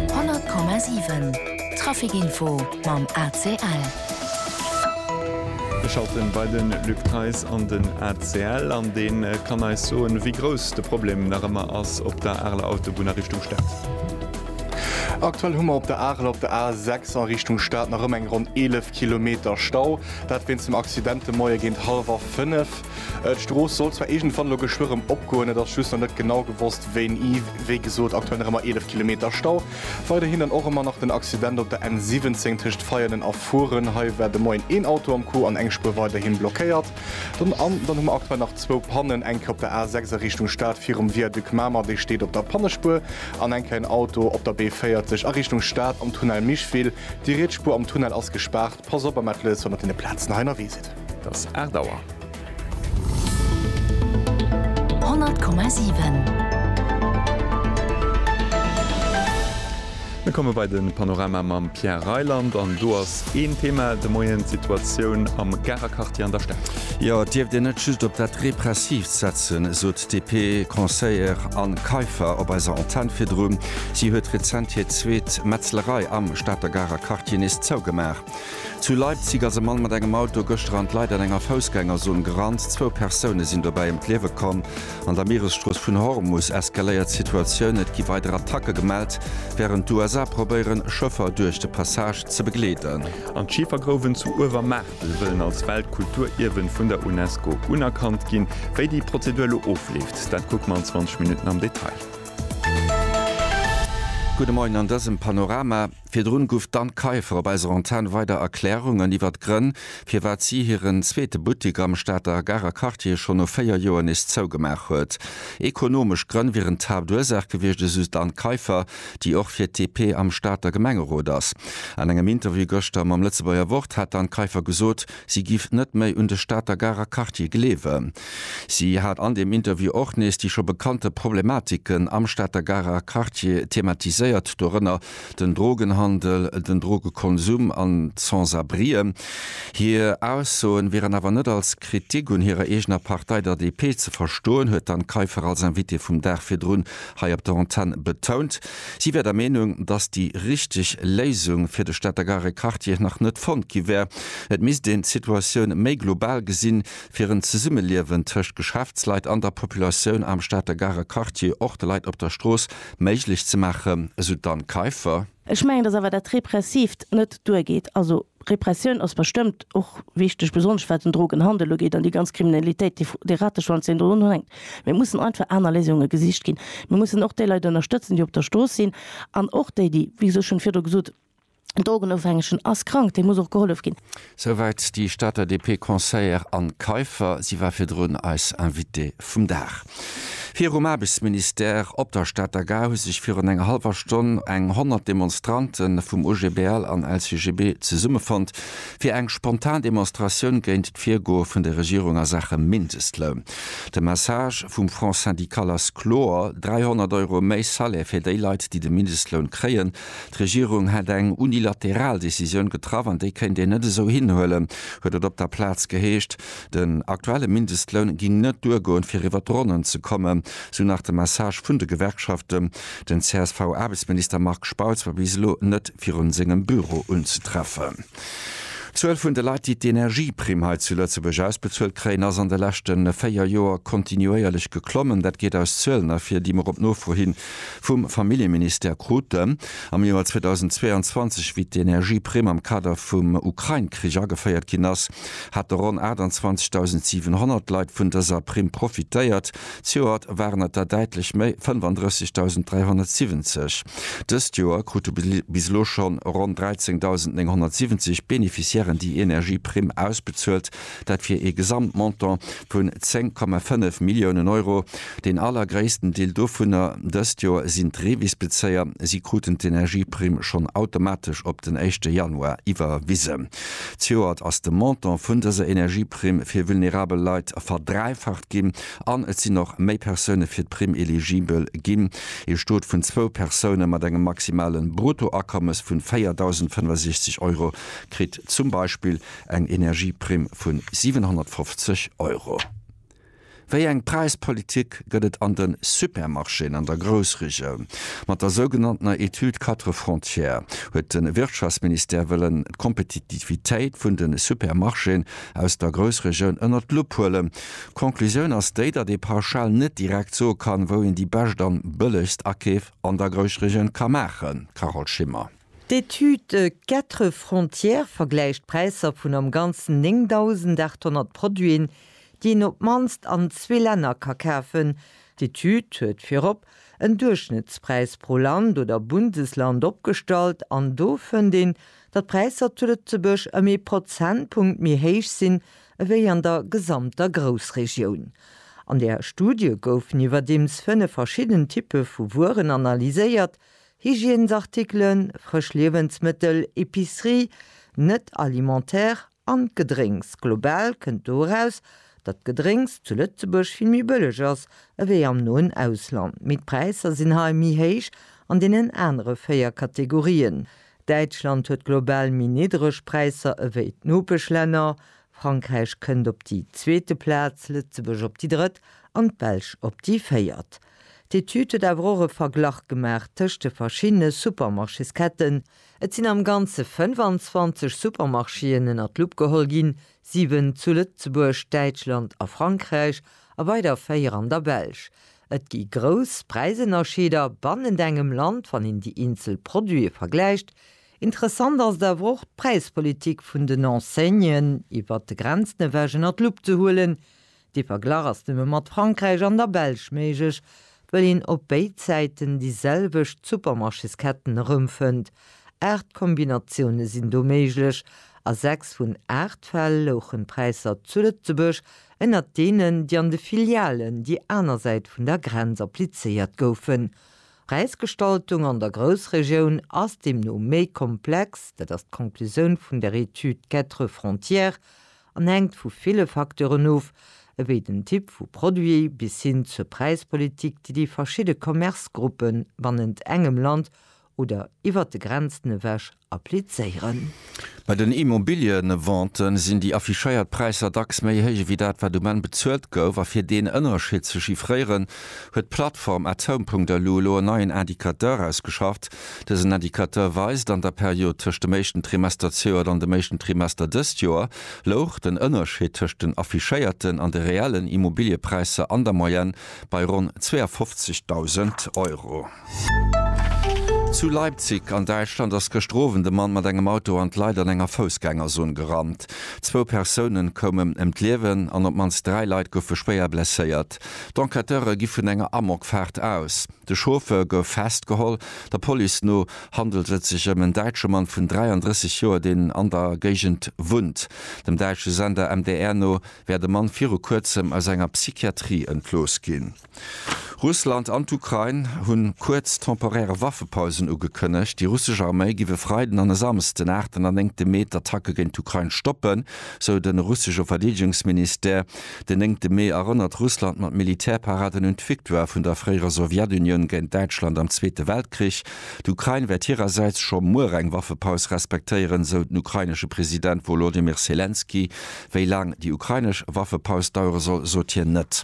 100,7 Trafic Info mam ACL. Ech schaffen bei de Luc Theis an den ACL an dee kann eis soen, wéi grouss de Problem nach ëmmer ass op der Areler Autobunn a Richtung Stad. Aktuell hu mer op der Arel op der A 6 a Richtung Stad nach ëmmer eng ronn 11 Kilometer Stau. Dat wéinst dem Accident de Moie géint hallwer fënnef. D'Strooss soll zwar iergendwann elo geschwë rëm opgoen, et ass just nach net genau gewosst wéini. Wéi gesot, aktuell nach ëmmer 11 Kilometer Stau. Weiderhin dann och ëmmer nach den Accident op der N17 tëscht Veianen a Furen. Hei war de Moien een Auto am Coup an eng Spuer weiderhi blockéiert. Dann an dann hu mer aktuell nach zwou Pannen, eng Kéier op der A6 a Richtung Stad virum Viaduc Mamer, dee steet op der Pannespuer, an eng Kéier en Auto op der B40 a Richtung Stad am Tunnel Micheville. Déi riets Spuer am Tunnel ass gespaart. Pass op, Ahmed Lewis, wann der deene Plazen hei erwee sidd. Et ass 8 Auer. 100,7. Mir komme bei de Panorama mam Pierre Reyland. An do ass een Thema de Moien, d'Situatioun am Garer Quartier an der Stad. Jo, et dierft een net just op dat Repressiivt setzen, esou. DP, Conseiller Anne Kaiffer op eiser Antenn virdru. Si huet rezent hir zweet Metzlerei am Stater Garer Quartier nees zougemaach. Zu Leipzig ass e Mann mat engem Auto gëschter an d'Leit an enger Foussgängerzon gerannt. Zwou Persoune sinn dobäi ëm d'Liewe komm. An der Mieresstrooss vun Hormus eskaléiert d'Situatioun. Et gi weider Attacke gemellt, wärend d'USA probéieren, Schëffer duerch de Passage ze begleeden. An d'Schifergrouwen zu Uewermaach. Se wëllen als Weltkulturierwen vun der UNESCO unerkannt ginn. Wéi déi Prozedur elo ofleeft, dat kucke mer an 20 Minutten am Detail. Gudde Moien an dësem Panorama. Virdrun guff d'Anne Kaiffer op eiser Antenn weider Erklärungen iwwert d'Grënn, firwat si hiren zweete Buttik am Stater Garer Quartier scho no 4 Joer nees zougemaach huet. Ekonomesch Grënn wieren d'Haaptursaach gewiescht, esou d'Anne Kaiffer. déi och fir d'DP am Stater Gemengerot ass. An engem Interview gëschter mam Lëtzebuerger Wort hat d'Anne Kaiffer gesot, si giff net méi un de Stater Garer Quartier gleewen. Si hat an deem Interview och nees déi scho bekannte Problematiken am Stater Garer Quartier thematiséiert, dorënner den Drogenhandel, den Drogekonsum an d'Sans-abrien. Hir Aussoen wieren awer net als Kritik un hirer eegener Partei, der DP, ze verstoen, huet d'Anne Kaiffer als Invitée vum Dag virdrun hei op der Antenn betount, si wär der Meenung, datt déi richteg Léisung fir de Stater Garequartier nach net fonnt gi wär. Et misst een d'Situatioun méi global gesinn, fir en Zesummeliewen tëscht Geschäftsleit an der Populatioun am Stater Garequartier, och de Leit op der Strooss, méiglech ze maachen, esou d'Anne Kaiffer. Ech mengen, dass awer dat Repressivt net duergeet. Also Repressioun ass bestëmmt och wichteg, besonnesch wat den Drogenhandel ugeet an déi ganz Kriminalitéit, déi, dee Rateschwanz, deen do drunhänkt. Mee et mussen einfach aner Léisunge gesicht ginn. Mir mussen och déi Leit ënnerstëtzen, déi op der Strooss sinn, an och déi, déi, wéi gesot, ech hunn virdru gesot, den Drogenofhängegen ass krank, deem muss och gehollef ginn. Souwäit déi Stater DP Conseillère Anne Kaiffer. Si war virdrun eis Invitée vum Dag. Virum Aarbechtsministère op der Stater Gare hu sech virun enger hallwer Stonn eng 100 Demonstrante vum OGBL an LCGB zesummefonnt, fir eng spontan Demonstratioun géint d'Virgoe vun der Regierung a Saache Mindestloun. De Message vum Front syndical ass kloer, 300 Euro méi Salaire fir déi Leit, déi de Mindestloun kréien. D'Regierung hätt eng unilateral Decisioun getraff an déi kéint een net esou hinhuelen, huet et op der Plaz geheescht. Den aktuelle Mindestloun géing net duergoen, fir iwwer d'Ronnen ze kommen, sou nach de Message vun de Gewerkschaften. Den CSV-Aarbechtsminister Marc Spautz war bis elo net virun sengem Büro unzetreffen. D'Zuel vun de Leit, déi d'Energieprimm hei zu Lëtzebuerg ausbezuelt kréien, ass an de leschte véier Joer kontinuéierlech geklommen. Dat geet aus Zuelen ervir, déi mer op Nofro hin Vum Familljeministère krut de am Joer 2022, wéi d'Energieprimm am Kader vum Ukrain-Krich ageféiert ginn ass, hate ronn 28.700 Leit vun dëser Primm profitéiert. Zejoert waren et der däitlech méi, 35.370. Dëst Joer krute bis elo schonn ronn 13.970 Beneficiairen déi Energieprimm ausbezuelt, Dat fir ee Gesamtmontant vun 10,5 Milliounen Euro. Deen allergréissten Deel dovunner dëst Joer sinn d'Revis-Bezéier. Si kruten d'Energieprimm schonn automatesch op den éischte Januar iwwerwisen. Zejoert ass de Montant vun dëser Energieprimm fir vulnerabel Leit verdräifacht ginn an et sinn och méi Persoune fir d'Primm eligibel ginn. Ee Stot vun zwou Persoune mat engem maximale Bruttoakommes vun 4.065 Euro kritt zum Beispill Eng Energieprimm vun 750 Euro. Wéi eng Präispolitik gëtt et an de Supermarchéen an der Groussregioun? Mat der sougenanntener Étude Quatre Frontières huet de Wirtschaftsministère wëllen d'Kompetitivitéit vun de Supermarchéen aus der Groussregioun ënnert d'Lupp huelen. D'Konklusioun ass déi, datt ee pauschal net direkt soe kann, wou een déi bescht an bëllegst Akeef an der Groussregioun ka maachen. Carole Schimmer. D'Etüde Quatre Frontières vergläicht d'Präisser vun am Ganzen 9.800 Produiten, déi een op d'mannst an zwee Länner ka kafen. D'Etüd huet virop en Duerchschnëttspräis pro Land oder Bundesland opgestallt an do fënnt een, datt d'Präisser zu Lëtzebuerg ëm ee Prozentpunkt méi héich sinn ewéi an der gesamter Groussregioun. An der Studie goufen iwwerdeems fënnef verschidden Typpe vu Wueren analyséiert, Hygiènesartikelen, frësch Liewensmëttel, Epicerie, net alimentaire, an d'Gedrénks. Global kënnt do eraus, datt d'Gedrénks zu Lëtzebuerg vill méi bëlleg ass ewéi am noen Ausland. Mee d'Präisser sinn hei méi héich an deenen anere véier Kategorien. Däitschland huet global méi niddreg Präisser ewéi d'Nopeschlänner, Frankräich kënnt op déi zweete Plaz, Lëtzebuerg op déi drëtt an d'Belsch op déi véiert. D'Etüd huet awer och e Verglach gemaach tëscht de verschiddene Supermarchésketten. Et sinn am Ganze 25 Supermarchéen ënner d'Lupp geholl ginn, siwen zu Lëtzebuerg, Däitschland a Frankräich a weider véier an der Belsch. Et gi grouss Präisënnerscheeder bannent engem Land, wann een déi eenzel Produite vergläicht. Interessant ass et awer och, d'Präispolitik vun den Enseignen iwwert de Grenzen ewech ënner d'Lupp ze huelen. De Verglach ass nëmme mat Frankräich an der Belsch méiglech, wëll een op béid Säiten déi selwecht Supermarchésketten erëmfënnt. Aacht Kombinatioune sinn do méiglech. A sechs vun aacht Fäll louchen d'Präisser zu Lëtzebuerg ënnert deenen, déi an de Filialen déi aner Säit vun der Grenz applizéiert goufen. D'Präisgestaltung an der Groussregioun ass deemno méi komplex, dat ass d'Conclusioun vun der Etüd Quatre Frontières, an hänkt vu ville Facteuren of, ewéi den Typ vu Produit bis hin zur Präispolitik, déi déi verschidde Commercegruppe bannent engem Land oder iwwert de Grenzen ewech applizéieren. Bei den Immobiliëvente sinn déi affichéiert Präisser dacks méi héich ewéi dat, wat um Enn bezuelt gouf. A fir deen Ënnerschied ze chiffréieren, huet d'Plattform Atom.lu elo en neien Indicateur ausgeschafft, Dësen Indicateur weist, an der Period tëscht dem éischten Trimester d'sjoert an dem éischten Trimester dëst Joer, louch den Ënnerscheed tëscht den affichéierten an de reellen Immobiliëpräisser an der Moyenne bei ronn 52.000 Euro. Zu Leipzig an Däitschland ass gëschter Owend e Mann mat engem Auto an d'Leit an enger Foussgängerzon gerannt. Zwou Persounen koumen ëm d'Liewen an op d'mannst dräi Leit goufe schwéier blesséiert. D'Enquêteure gi vun enger Amokfaart aus. De Chauffeur gouf festgeholl. Der Police no handelt et sech ëm en däitsche Mann vun 33 Joer, deen an der Géigend wunnt. Dem däitsche Sender MDR no wär de Mann viru kuerzem aus enger Psychiatrie entlooss ginn. Russland an d'Ukrain hunn kuerz temporäre Waffepausen ugekënnegt. Déi russesch Arméi giff e Freiden an e Samsden, 8 an 9 Mee, d'Attacke géint d'Ukrain stoppen, sou de russesche Verdeedegungsministère. Den néngte Mee erënnert Russland mat Militärparaden un d'Victoire vun der fréierer Sowjetunioun géint Däitschland am Zweete Weltkrich. D'Ukrain wäert hirersäits scho muer eng Waffepaus respektéieren, sou den ukrainesche President Wolodymyr Selenskyj. Wéi laang déi ukrainesch Waffepaus dauere soll, sot hien net.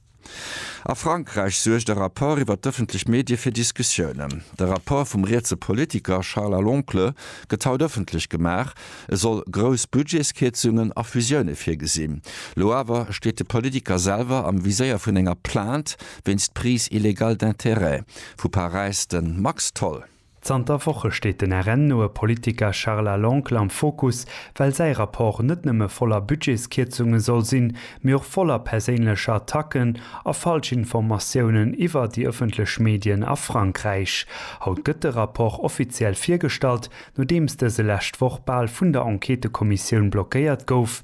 A Frankräich suergt e Rapport iwwer d'ëffentlech Medie fir Diskussiounen. De Rapport vum rietse Politiker Charles à l'Oncle gëtt haut ëffentlech gemaach. E soll grouss Budgetskierzungen a Fusioune virgesinn. Lo awer steet de Politiker selwer am Viséier vun enger Plainte wéinst Prise illégale d'intérêts. Vu Paräis de Max Tholl. Zanter Woche steet den RN-noe Politiker Charles Aloncle am Fokus, well säi Rapport net nëmme voller Budgetskierzunge soll sinn, mee och voller perséinlecher Attacken a Falschinformatiounen iwwer déi ëffentlech Medien a Frankräich. Haut gëtt de Rapport offiziell virgestallt, nodeems dëse lescht Woch bal vun der Enquêtëkommissioun blockéiert gouf,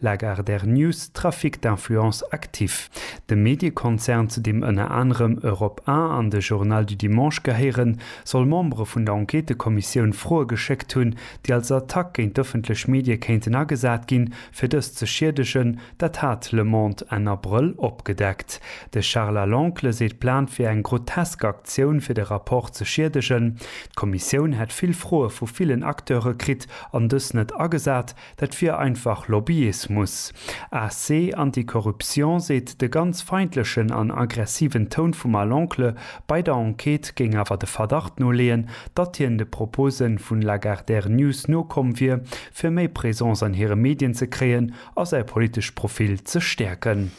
Lagardère News, Trafic d'influence actif. De Mediekonzern, zu deem ënner anerem Europe 1 an de Journal du dimanche gehéieren, soll Membere vun der Enquêtekommissioun Froe geschéckt hunn, déi als Attack géint d'ëffentlech Medie kéinten agesat ginn, fir dës ze schiedegen. Dat hat Le Monde Enn Abrëll opgedeckt. De Charles à l'Oncle seet, d'Plan wier eng grotesk Aktioun, fir de Rapport ze schiedegen. D'Kommissioun hätt vill Froe vu villen Acteure kritt an dës net agesat. Dat wier einfach Lobbyismus. AC Anticorruption seet, de ganz feindlechen an aggressiven Toun vum Al Oncle bei der Enquête géing awer de Verdacht noleeën, datt hien de Propose vun Lagardère News nokomm wier, fir méi Présence an hire Medien ze kréien a säi politescht Profil ze stäerken.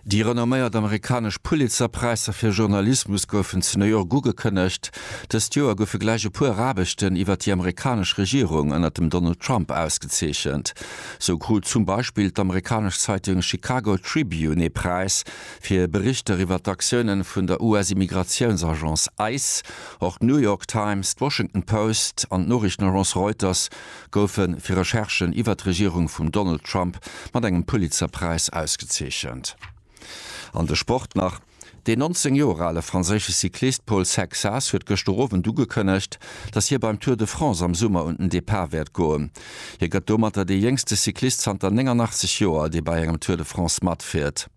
Déi renomméiert amerikanesch Pulitzer-Präisser fir Journalismus goufen zu New York ugekënnegt. Dëst Joer goufe gläich e puer Aarbechten iwwer déi amerikanesch Regierung ënner dem Donald Trump ausgezeechent. Sou krut zum Beispill d'amerikanesch Zeitung Chicago Tribune ee Präis fir Berichter iwwer d'Aktioune vun der US-Immigratiounsagence ice. Och d'New York Times, d'Washington Post an d'Noriichtenagence Reuters goufe fir Recherchen iwwer d'Regierung vum Donald Trump mat engem Pulitzer-Präis ausgezeechent. An de Sport nach, Deen 19 Joer ale franséische Cyclist Paul Sexas huet gëschter Owend ugekënnegt, datt hie beim Tour de France am Summer un den Depart wäert goen. Hie gëtt domatter dee jéngste Cyclist zanter 89 Joer, dee bei engem Tour de France matfiert.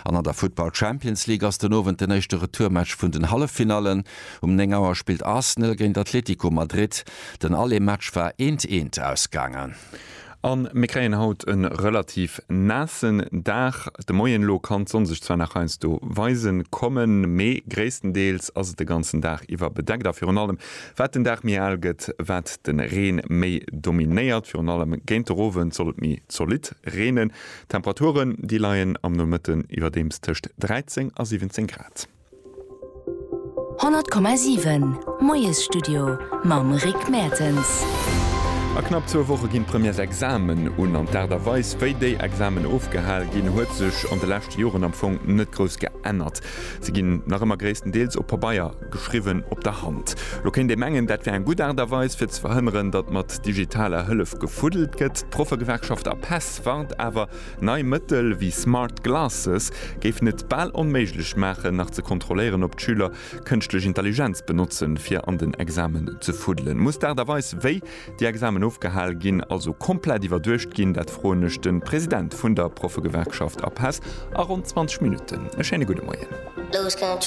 An an der Futtball Champions League ass den Owend den éischte Retourmatch vun den Halleffinallen. Um 9 Auer spillt Arsenal géint Atletico Madrid. Den Aller Match war eent eent ausgaangen. A mir kréien haut e relativ naassen Dag. De Moien elo kann d'Sonn sech zwar nach heiansdo weise kommen, mee gréisstendeels ass et de ganzen Dag iwwer bedeckt. A virun allem wat den Dag méi al gëtt, wat de Reen méi dominéiert. Virun allem géint de Rowend soll et méi zolidd reenen. D'Temperaturen, déi leien am Nomëtten iwwerdeems tëscht 13 a 17 Grad. 100,7 Moiesstudio mam Rick Mertens. A knapp zwou Woche ginn d'Premièresexamen un. An d'Aart a Weis, wéi déi Examen ofgehal ginn, huet sech an de leschte Joren am Fong net grouss geännert. Se ginn nach ëmmer gréisstendeels op Pabeier geschriwwen, op der Hand. Lo kéint ee mengen, dat wär eng gutt Aart a Weis, fir ze verhënneren, datt mat digitaler Hëllef gefuddelt gëtt. D'Proffegewerkschaft APESS D'Microsoft warnt awer, nei Mëttel wéi Smart Glasses géifen et bal onméiglech maachen, nach ze kontrolléieren, ob d'Schüler kënschtlech Intelligenz benotzen, fir an den Examen ze fuddelen. Muss d'Aart a Weis, wéi déi Examen ofgehal ginn, also komplett iwwerduecht ginn? Dat froen ech de President vun der Proffegewerkschaft Apes a ronn 20 Minutten. E schéine gudde Moien.